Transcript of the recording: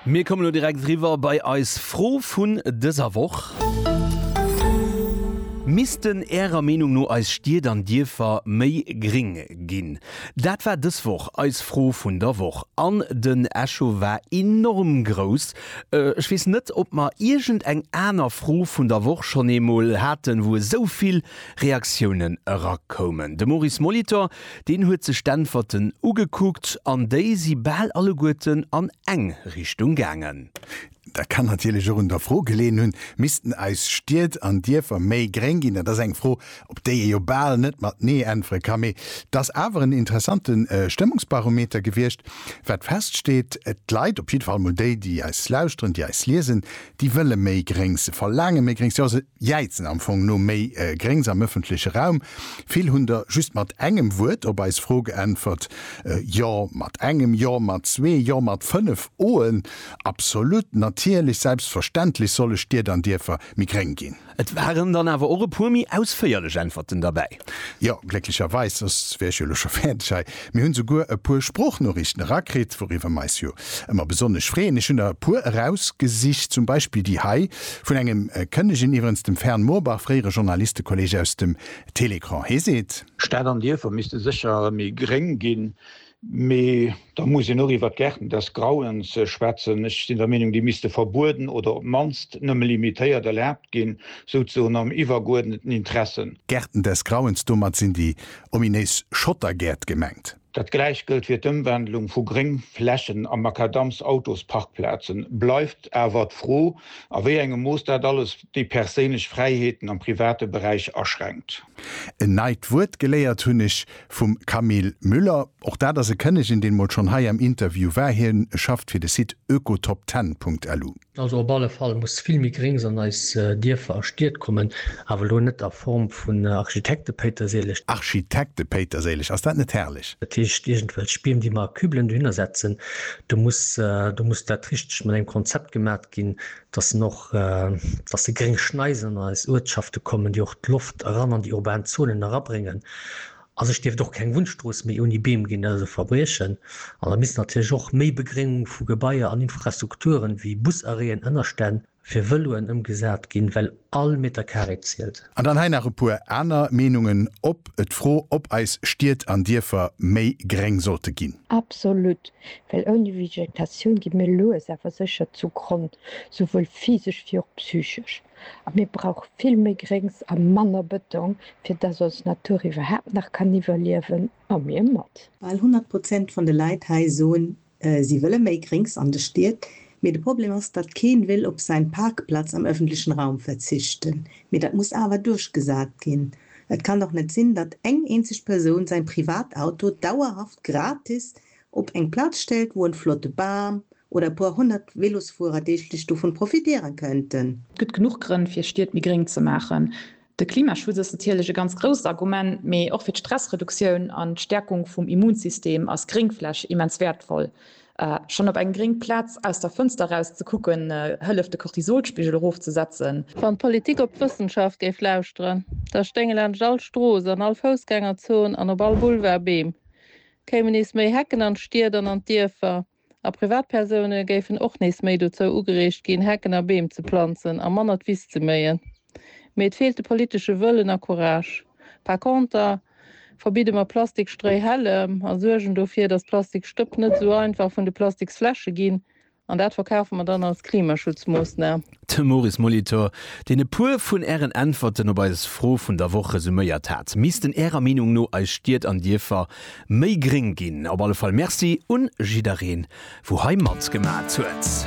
Mir kommen elo direkt eriwwer bei eis Fro vun dëser Woch. Missten Ärer Meenung no eis Stied an Dierfer méi gring ginn? Dat war dës Woch eis Fro vun der Woch an den Echo war enorm grouss. Ech weess net, ob mer iergend eng aner Fro vun der Woch schonn eemol haten, wou esou vill Reaktiounen erakoumen. De Maurice Molitor, Deen huet sech d'Äntwerten ugekuckt an déi si bal alleguerten an eng Richtung gaangen. Dat kann natierlech och un der Fro geleeën hunn, Missten eis Stied an Dierfer méi gréng ginn? Dat ass eng Fro, op déi ee jo bal net mat Nee äntwere kann. Mee et ass awer en interessante Stëmmungsbarometer gewiescht. Wat feststeet, D'Leit, op jidde Fall mol déi, déi eis lauschteren, déi eis liesen, déi wëlle méi Gréngs. Se verlaange méi Gréngs. Jäizen am Fong no méi Gréngs am ëffentleche Raum. Vill hunn der just mat engem Wuert op eis Fro geäntwert, Jo mat engem, Jo mat zwee, Jo mat fënnef Oen, Absolut, Natierlech, Selbstverständlech soll e Stied an Dierfer méi gréng ginn. Et waren dann awer och e puer méi ausféierlech Äntwerten derbäi. Jo, glécklecherweis, soss wär ech jo elo scho fäerdeg hei. Mir hunn souguer e puer Sproochnoriichten erakritt, wouriwwer mer eis jo ëmmer besonnesch freeën. Ech hunn der e puer erausgesicht, zum Beispill déi hei vun engem Kënnegen, iwwerens dem Fern Moorbach, fréiere Journalistekolleg aus dem Télécran. Hee seet. Stad an Dierfer misste sécher méi gréng ginn. Mee da muss een och iwwert d'Gärten des Grauens schwätzen. Ech sinn der Meenung, déi misste verbueden oder op d'mannst nëmme limitéiert erlaabt ginn, souzesoen am iwwergeuerdneten Interesse. Gärten des Grauens, domat sinn déi ominéis Schottergäert gemengt. Dat gläicht gëllt fir d'Ëmwandlung vu Gréngflächen a Makadamsautosparkplazen. Bleift awer d'Fro, a wéi engem Mooss dat alles déi perséinlech Fräiheeten am private Beräich aschränkt. En neit Wuert geléiert hunn ech. Vum Camille Müller. Och dat ass e Kënnegen, deen emol schonn hei am Interview war. Hie schafft fir de Site oekotopten.lu. Also op alle Fall muss vill méi Gréngs an eis Dierfer a Stied kommen, awer elo net a Form vun Architektepéiterséileg. Architektepéiterséileg, ass dat net herrlech? Dat heescht iergendwelch Biem, déi mer a Kübelen dohinner setzen. Do muss, do muss dat richteg mat engem Konzept gemaat. ginn, dass en och, dass déi gréng Schneisen an eis Uertschafte kommen, déi och d'Loft eran an déi urban Zonen erabréngen. A sech dierft och keng Wunnstrooss méi ouni Beem ginn, dat ass e Verbriechen. An da misst natierlech och méi Begréngung vu Gebaier an Infrastrukturen, wéi Busarrêten, Ënnerstänn fir Vëloen ëmgesat ginn, well All Meter Carré zielt. An dann hei nach e puer aner Meenungen op d'Fro, ob eis Stied an Dierfer méi gréng sollte ginn. Absolut, well ouni Vegetatioun gi mir lues awer sécher zu Gronn, souwuel physesch wéi och psychesch. A mir brauche vill méi Gréngs a manner Bëtong, fir dass ons Natur iwwerhaapt nach kann iwwerliewen, a mir mat. Bal 100 Prozent van de Leit hei soen Si wëlle méi Gréngs an de Stied, mee de Problem ass, datt keen will op säin Parkplatz am öffentlichen Raum verzichten. Mee datt muss awer duerchgesaat ginn. Et kann dach net sinn, datt eng eenzeg Persoun säin Privatauto dauerhaft gratis op eng Platz stellt, wou en flotte Baam oder e puer honnert Velosfuerer deeglech dovun profitieren könnten. Et gëtt genuch Grënn fir Stied méi gréng ze maachen. De Klimaschutz ass natierlech e ganz grousst Argument, mee och fir d'Stressreduktioun an d'Stäerkung vum Immunsystem ass Gréngfläch immens wäertvoll. Schonn op eng gréng Plaz aus der Fënster raus ze kucken, hëlleft de Cortisolspigel erofzesetzen. Wann d'Politik op d'Wëssenschaft géif lauschteren, da stéinge laanscht all Strooss, an all Foussgängerzon an op all Boulevard Beem, kéimen nees méi Hecken an d'Stied an an d'Dierfer, A Privatpersoune géifen och nees méi dozou ugereegt ginn, Hecken a Beem ze planzen a manner d'Wiss ze méien. Mee et feelt de politesche Wëllen a Courage. Par conter verbidde mer Plastikstréihällem a suergen dofir, dass Plastikstëpp net esou einfach vun de Plastiksfläsche ginn. An dat verkafe mer dann als Klimaschutzmoossnam. De Maurice Molitor, deen e puer vun Ären Äntwerten op eis Fro vun der Woch resuméiert hat. Missten Ärer Meenung no eis Stied an Dierfer méi gréng ginn? Op alle Fall Merci un jiddereen, wou hei matgemat huet.